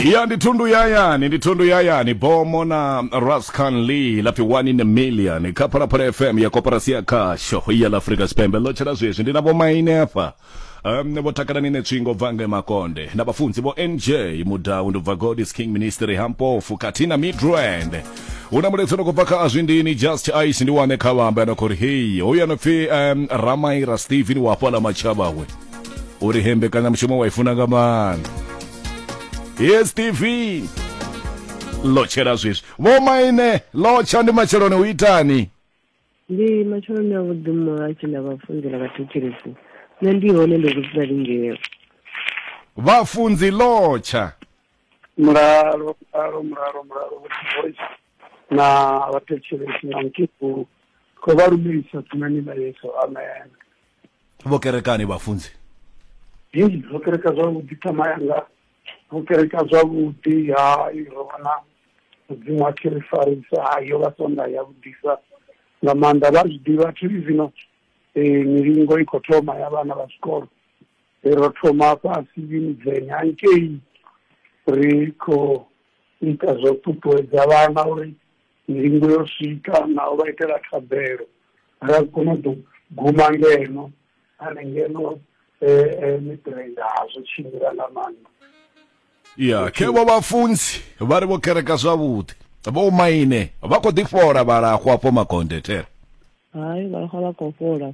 ya ndi thundu yayani ndi thundu yayani bomo na rascan lee lapfi one in a million kha phalaphala fm ya koporasi ya khasho ya la afrika tshipembe ḽo tshela zwezwi ndi na vhomaine afha um, vho takalani ne tswingo bva nge makonde na vhafunzi vho nj mudau ndi bva god is king ministry hampofu khathihi na midrand hu na muletso no kubva kha azwindini just ice ndi wane kha vhamba yana khori heyi hoyu ano pfi um, ramaira stephen wa hafhala matshavhawe uri he mbekanyamushumo wa i funa nga maanḓa yes tv lotshela swiswi vho maine lotsha ndi matsheloni u itani ndi matsheloni a vhuḓi mmoa tshi na vhafunzi na vhathetshelesi nṋe ndi hone ndo kudzula lingeo vhafunzi lotsha mulalo mulalo mulalo mulalo voice na vhathetshelesi na mukikulu ko vha lumelisa tumani ḽa yesu amen vho kerekani vhafunzi hei ro kereka zwavhuḓi thama yanga ro kereka zwavhuḓi hai ro vhona mudzimu wa tshi ri farisa hai yo vha sonda ya vhudisa nga maanḓa vha zwi ḓivha thi zwino um milingo i khou thoma ya vhana vha zwikolo ro thoma fhasi midzenya hangei ri khou ita zwo ṱuṱuwedza vhana uri ndingo yo swika na u vha itela thabelo ra kona u ḓo guma ngeno ane ngeno miṱirenda hazwo tshimbila nga maanḓa ya khe vho vhafunzi vha ri vho kereka zwavhuḓi vho maine vha kho ḓi fhola vhalahwa afho makonde thera hai vhalahwa vha khou fhola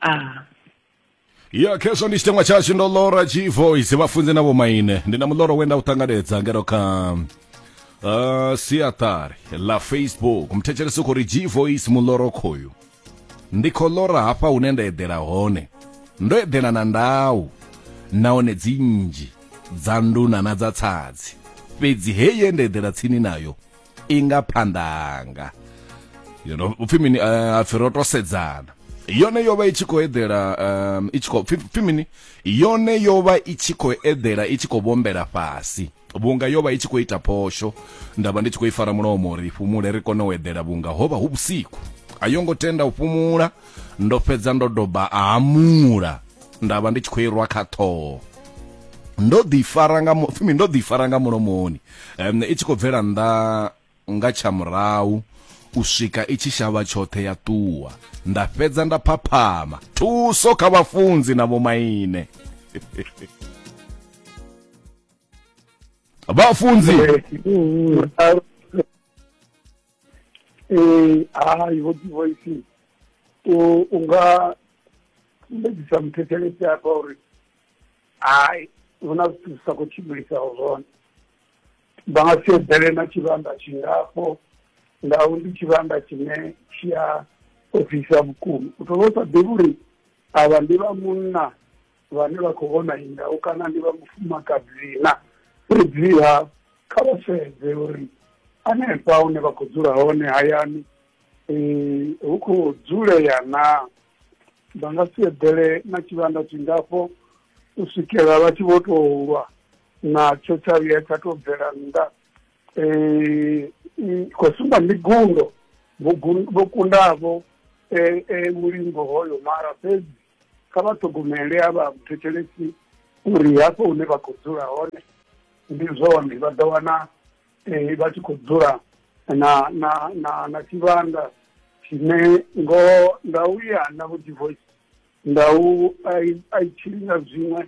ah ya khezwo ndi tshiteṅwa tshashu ndo lora chivoice vhafunzi na vhomaine ndi na muloro we nda u ṱanganedza ngero kha uh, siaṱari ḽa facebook muthetshelesi u khou ri gvoice muloro khoyu ndi khou lora hafha hune nda eḓela hone ndo eḓela na ndau nahone dzi nnzhi dza nduna na dza tsadzi fhedzi heye nda eḓela tsini nayo i nga phanḓa hanga you know upfi mini uh, pfi ro to sedzana yone yo vha i tshi khou eḓela um, i tshi khou pfi mini yone yo vha i tshi khou eḓela i tshi khou vhombela fhasi vhunga yo vha i tshi khou ita phosho nda vha ndi tshi khou i fara mulomo uri i fhumule ri kone u eḓela vhunga ho vha hu vhusiku a yo ngo tenda u fhumula ndo fhedza ndo doba a hamula nda vha ndi tshi khou irwa kha ṱhoho ndo ḓifara nga fumi ndo ḓifara nga mulomoni um, i tshi khou bvela nnḓa nga tsha murahu u swika i tshi shavha tshoṱhe ya ṱuwa nda fhedza nda phaphama thuso kha vhafunzi na vhomaine vhafunzi eh, hayi vho divoisi u nga sumbedzisa muthethelesi hafha uri Hai, hu na zwithu zwi sa khou tshimbilisaho zwone. Vha nga si eḓele na tshivhanda tshingafho, ndau ndi tshivhanda tshine tshi a ofhisa vhukuma. U tou vha u sa ḓivhi uri avha ndi vha munna vhane vha khou vhona iyi ndau kana ndi vha mufumakadzi na. Fhedziha kha vha sedze uri hanefha hune vha khou dzula hone hayani hu khou dzulea naa. vha nga si eḓele na tshivhanda tshingafho u swikela vha tshi vho tou lwa natsho tsha vhuya tsha tou bvela nnḓa um khou sumba ndi gundo vho kundavho um mulingo hoyo mara fhedzi kha vha ṱhogomele a vha thetshelesi uri hafho hune vha khou dzula hone ndi zwone vha ḓo wana eh, vha tshi khou dzula na na na na tshivhanda tshine ngo nda u ya na vho divorce nda u a i tshili nga zwiṅwe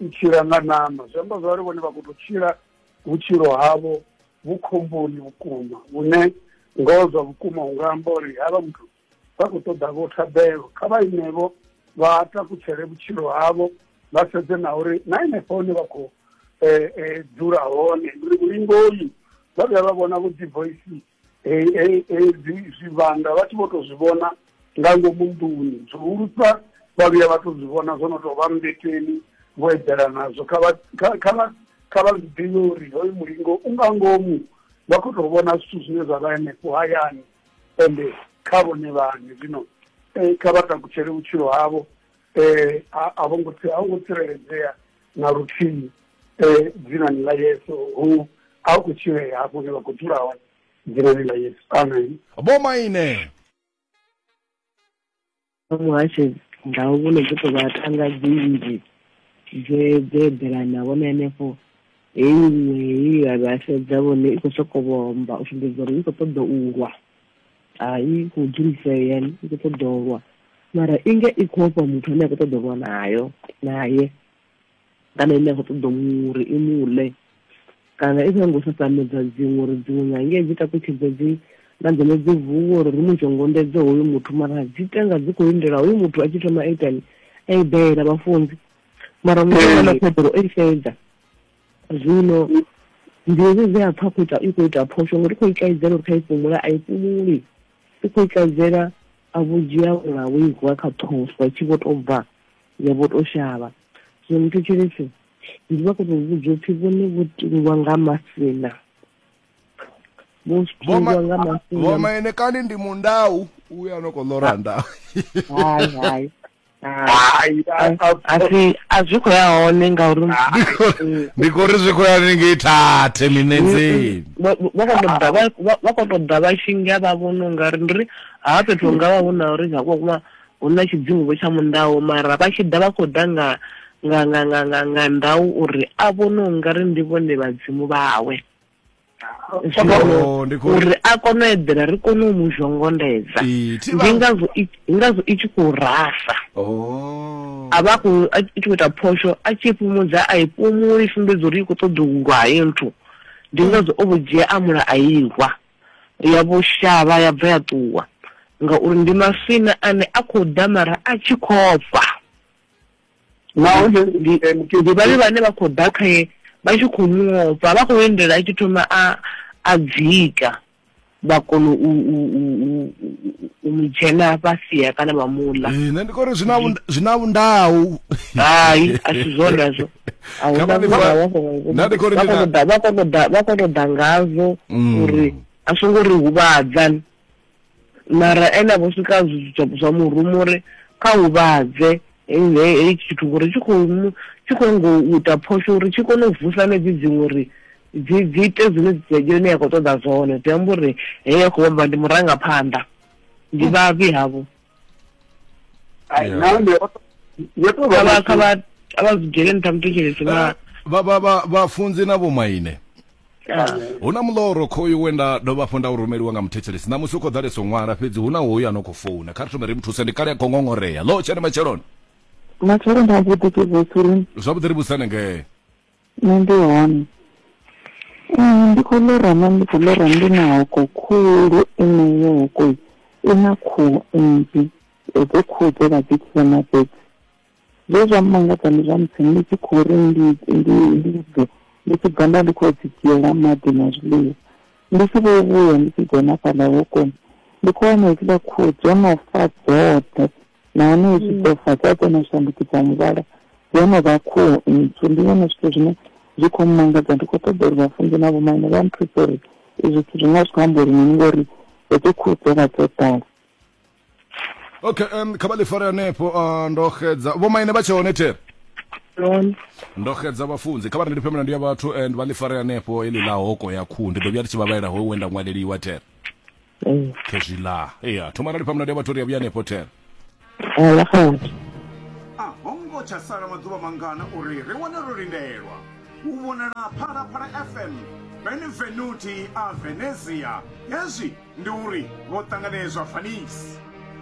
i tshila nga nama zwi amba zwari vhone vha khou tou tshila vhutshilo havho vhu khomboni vhukuma vhune ngoho zwa vhukuma u nga amba uri havha muthu vha khou ṱoḓa vho thabelo kha vha inevho vha takutshele vhutshilo havho vha sedze na uri na henefho hone vha khou eh, eh, dzula hone uri vhulingoyi vha vhuya vha vhona vho dzi voice eh, zwivhanda vha tshi vho tou zwi vhona nga ngomu nḓuni zwihulusa vha vhuya vha tou zwi vhona zwo no tou vha mmbeteni vho eḓela nazwo kha vha zwi ḓivhe uri hoyu mulingo u nga ngomu vha khou tou vhona zwithu zwine zwa vha henefho hayani ende kha vhone vhane zwino eh, kha vha takutshele vhutshilo havho eh, a a vho ngo tsi- a vho ngo tsireledzea na luthihi eh, dzinani ḽa yesu hu a hu khou tshilea hafho hune vha khou dzula hone dzinani ḽa yesu amen vho maine Kha muhasho ndau vho no ḓi tou vha thanga dzi nnzhi dze dze eḓelana vhone henefho heyi iṅwe heyi vha vha sedza vhone i khou sokou vhomba u sumbedza uri i khou ṱoḓa u lwa hai khou dzulisea i khou ṱoḓa u lwa mara inga i khou ofha muthu ane a khou ṱoḓa u lwa nayo naye kana ine a khou ṱoḓa muri i mule kana i songo sasamedza dziṅwe uri dziṅwe nyange dzi takutshedze dzi na dzone dzi vuwe uri ri mu tshongondedze hoyu muthu mara dzi tenga dzi khou lindela hoyu muthu a tshi thoma itani a i daela vhafunzi mara muaa na khodoro o i fhedza zwino ndi hezwi dzi a pfa khou ita i khou ita phosho ngori i khou ikaidzela uri kha i fumula a i fumuli i khou ikaidzela a vhudzhia ula wo i vuwa kha ṱhofu a tshi vho tou bva ya vho to shavha zwino ni thetshelese ndi vha koto vhudza upfhi vhone vho tingwa nga masina vho tingwa nga masina vhomaine kani ndi mundau uya no kho ḽora ndau hai hai asi a zwi khou ya hone ngauri ndi khou ri zwi khou ya ningei thathe minenzeni vha khou tou ḓa vha tshi nga vha vhona ungari ndi ri ha fhethu nga vha vhona uri nga kuma Hu na tshidzimu-vho tsha mundau, mara vha tshi ḓa vha khou ḓa nga, nga, nga, nga, nga, nga ndau uri a vhone u nga ri ndi vhone vhadzimu vhawe. Zwino Oh, ndi khou- uri a kone u eḓela ri kone u mu zhongondedza. Ee, thi vha- Ndi ngazwo i- ndi ngazwo i tshi khou rasa. Oh. a vha khou a tshi khou ita phosho a tshi fhumudza a i fhumuli i sumbedza uri i khou ṱoḓa u lwa heyo nthu ndi ngazwo o vho dzhia a mula a i lwa ya vho shavha ya bva ya ṱuwa, ngauri ndi maswina ane a khou damara a tshi khofha. Nahone ndi ndi vhavhi vhane vha khou ḓa khae vha tshi khou mu ofha, vha khou lindela a tshi thoma a a dzika vha kona u u u u- u mu dzhena vha sia kana vha mu ḽa. Eh, nṋe ndi khou ri zwi na vhund- zwi na vhundau hai a si zwone hezwo a hu na murahu vha songo Nṋe ndi khou ri vha ndi kone na- u ḓa- vha kone u ḓa- vha kone u ḓa ngazwo Mm. uri a songo ri huvhadza mara ene a vho swika zwi- zwa- zwa murumu uri kha huvhadze he- he- hei tshithu ngori tshi khou mu- tshi khou ngo u ita phosho uri tshi kone u vusa nedzi dziṅwe uri dzi dzi ite zwine dzi- yone ya khou ṱoḓa zwone zwi amba uri heyo khou amba ndi murangaphanḓa ndi vhavhi havho ai Yeah. nahone o to- yo to vha kha vha na- kha vha a vha zwi dzhele nṱha muthetshelesi vha vha vha vha vhafunzi na vhomaine ah. hu na muloro khoyu we nda dovha hafhu nda u rumeliwa nga muthetshelesi ṋamusi u khou ḓalesa u ṅwala fhedzi hu na hoyu a no khou founa kha ri thome ri mu thuse ndi kale a khou ngongorea lo tshene matsheloni matshelo nda mbuḓi ke vosuri zwavhuḓi ri vhusane ngee Nṋe ndi hone ndi kho ḽora na ndi kho ḽora ndi na hoko khulu ine yo hoko i na khuhu nnzhi hedzo khuhu dze vha dzi tshila na fhedzi zwe zwa mmangadza ndi zwa musi ndi tshi khou ri ndi ndi ndi bve ndi tshi bva nda ndi khou dzi dzhiela maḓi na zwiḽiwa ndi tshi vho vhuya ndi tshi dzhena fhaḽa hokoni ndi khou wana hedzila khuhu dzo no fa dzoṱhe nahone i tshi ḓo fa dzi a kona u shandukisa muvhala dzi a no vha khuhu ntswu ndi zwone zwithu zwine zwi khou mmangadza ndi khou ṱoḓa uri vhafunzi na vhomaine vha nthuse uri izwi zwithu zwi nga zwi khou amba uri mini ngori hedzo khuhu dzo vha dzo ḓala okay um, kha vha ḽi fare hanefho uh, ndo xedza vhomaine vha tshe hone there Lone. ndo xedza vhafunzi kha vha ndi lifhe milandu ya vhathu and vha ḽi fare hanefho heḽi ḽa hoko ya khuhu ndi ḓo vhuya ndi tshi vha vhalela ho wenda ṅwaleliwa there Mm. khezwi ḽa ya thoma rali pamuna ndi vhathu ri a vhuya hanefho ten Ala khona. a ho ngo tsha sala maḓuvha mangana uri ri wane ro lindelwa u vhonala phalaphala fm benvenuti a venezia hezwi ndi uri vho ṱanganedzwa fanisi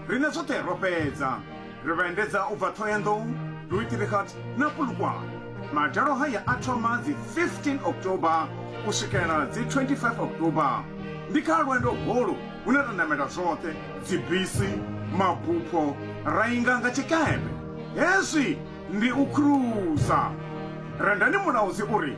Riṋe zwoṱhe ro fhedza, ri vha endedza u bva Thohoyandou, Louisdrichat na Polokwane. Madalo haya a thoma dzi 15 October u swikela dzi 25 October. Ndi kha lwendo holu hune ra namela zwoṱhe, dzibisi, mabupho, ra inga nga tshikepe. Hezwi ndi u khuruza. Rendani Mulaudzi u ri,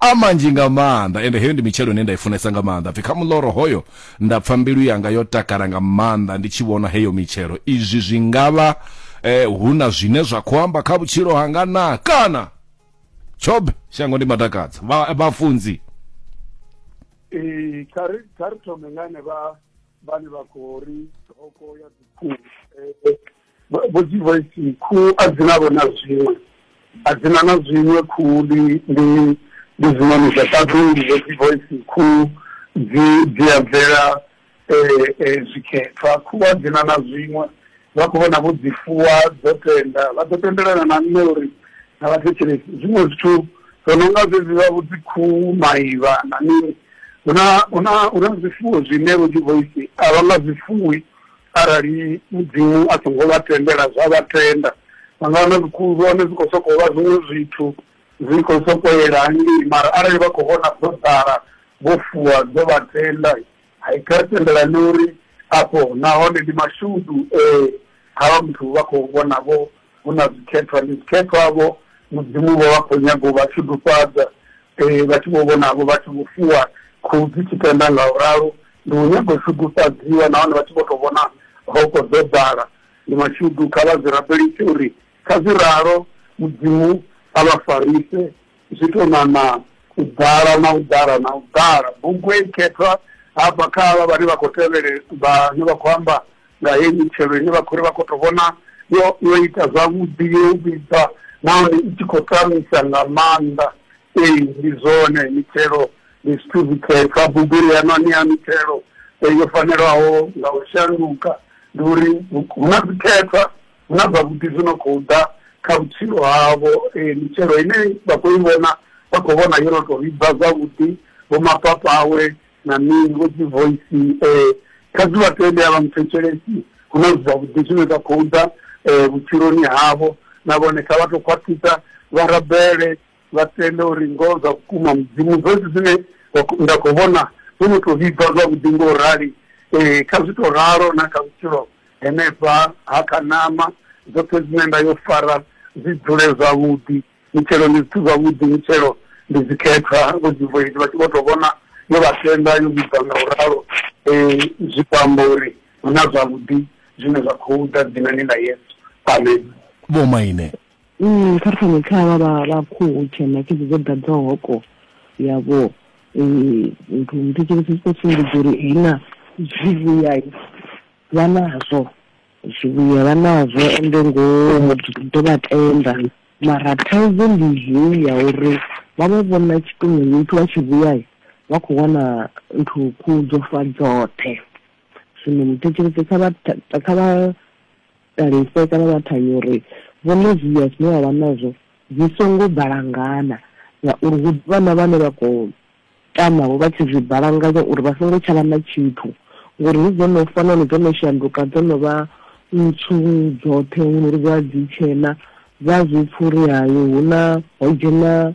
a manzhi nga maanḓa ende heyo ndi mitshelo ine nda i funesa nga maanḓa pfhi kha muḽoro hoyo nda pfha mbilu yanga yo takala nga maanḓa ndi tshi vhona heyo mitshelo izwi zwi ngavha eh, hu na zwine zwa khou amba kha vhutshilo hanga na kana tshobe shango ndi matakadza vhafunzi ee kha ri thome ngane vha vhane vha khou ri thoko ya dzikhuhu eh, vho dzi voice khuhu a dzi navho na zwiṅwe a dzi na na zwiṅwe khuhu ndi ndi ndi zwiṋoni zwa ṱaḓulu vho dzi voice khuhu dzi dzi a bvela zwikhethwa khuhu a dzi na na zwiṅwe vha khou vhona vho dzi fuwa dzo tenda vha ḓo tendelana na nṋe uri na vhathetshelesi zwiṅwe zwithu zwo no nga zwezwi vha vho dzi khuhu maivha na mini hu na hu na hu na zwifuwo zwine vho dzi voice a vha nga zwifuwi Arali Mudzimu a songo vha tendela zwa vha tenda, vha nga wana zwikhulwane zwi khou sokou vha zwiṅwe zwithu, zwi khou sokou yela hangei. Mara arali vha khou vhona dzo ḓala vho fuwa dzo vha tenda, hai kha ri tendelane uri afho nahone ndi mashudu e havha muthu vha khou vhona vho hu na zwikhethwa ndi zwikhethwa vho mudzimu vho vha khou nyaga u vha tshudufhadza um vha tshi vho vhonavho vha tshi vho fuwa khuhu dzi tshi tenda nga u ralo ndi u nyaga u shudufhadziwa nahone vha tshi vho tou vhona hoko dzo ḓala ndi mashudu kha vha zwi rabelise uri kha zwi ralo mudzimu a vha farise zwi tou ṋaṋa u ḓala na u ḓala na u ḓala. Bugu heyi khethwa hafha kha havha vhane vha khou tevhele, vhane vha khou amba nga heyi mitshelo ine vha khou ri vha khou tou vhona yo yo ita zwavhuḓi, yo vhibva nahone i tshi khou tamisa nga maanḓa. Ee, ndi zwone mitshelo ndi zwithu zwikhethwa, bugu ri a no ṋea mitshelo yo fanelaho nga u shanduka, ndi uri hu na zwikhethwa. Hu na zwavhuḓi zwi no khou ḓa kha vhutshilo havho. Ee, mitshelo ine vha khou i vhona vha khou vhona yo no tou vhibva zwavhuḓi, vho mapapawe na mini, vho dzi voice. Kha zwi vha tende a vha nthetshelesi, hu na zwithu zwavhuḓi zwine zwa khou ḓa vhutshiloni havho. Na vhone kha vha tou khwaṱhisa vha rabele vha tende uri ngoho zwa vhukuma mudzimu zwezwi zwine nda khou vhona zwo no tou vhibva zwavhuḓi ngo u rali ee kha zwi tou ralo na kha vhutshilo henefha ha kha nama zwoṱhe zwine nda yo fara zwi dzule zwavhuḓi mitshelo ndi zwithu zwavhuḓi mitshelo ndi dzikhethwa vho dzivoidi vha tshi vho tou vhona yo vha tenda yo vhibva nga u ralo um zwi khou amba uri hu na zwavhuḓi zwine zwa khou ḓa dzinani ḽa yesu amen vhomaine Mm, kha ri fane kha vha vha vha khuhu tshena khedzi dzo ḓadza hoko yavho nthu muthetsheleso zwi khou sumbedza uri hina zwivhuya vha nazwo zwivhuya vha nazwo ende ngo ḓo vha tenda mara thaidzo ndi heyi ya uri vha vha vhona tshifhinga muthu wa tshivhuya vha khou wana nthu khuhu dzo fa dzoṱhe zwino muthetsheleso kha vha kha vha Ṱalise kana vha thanya uri vhone zwiya zwine vha vha nazwo zwi songo balangana ngauri hu ḓo vha na vhane vha khou tama-vho vha tshi zwi balanganya uri vha songo tsha vha na tshithu ngori hedzi dzo no fa nahone dzo no shanduka dzo no vha ntswu dzoṱhe hu no ri vha dzi tshena vha zwi pfha uri hayo hu na ho dzhena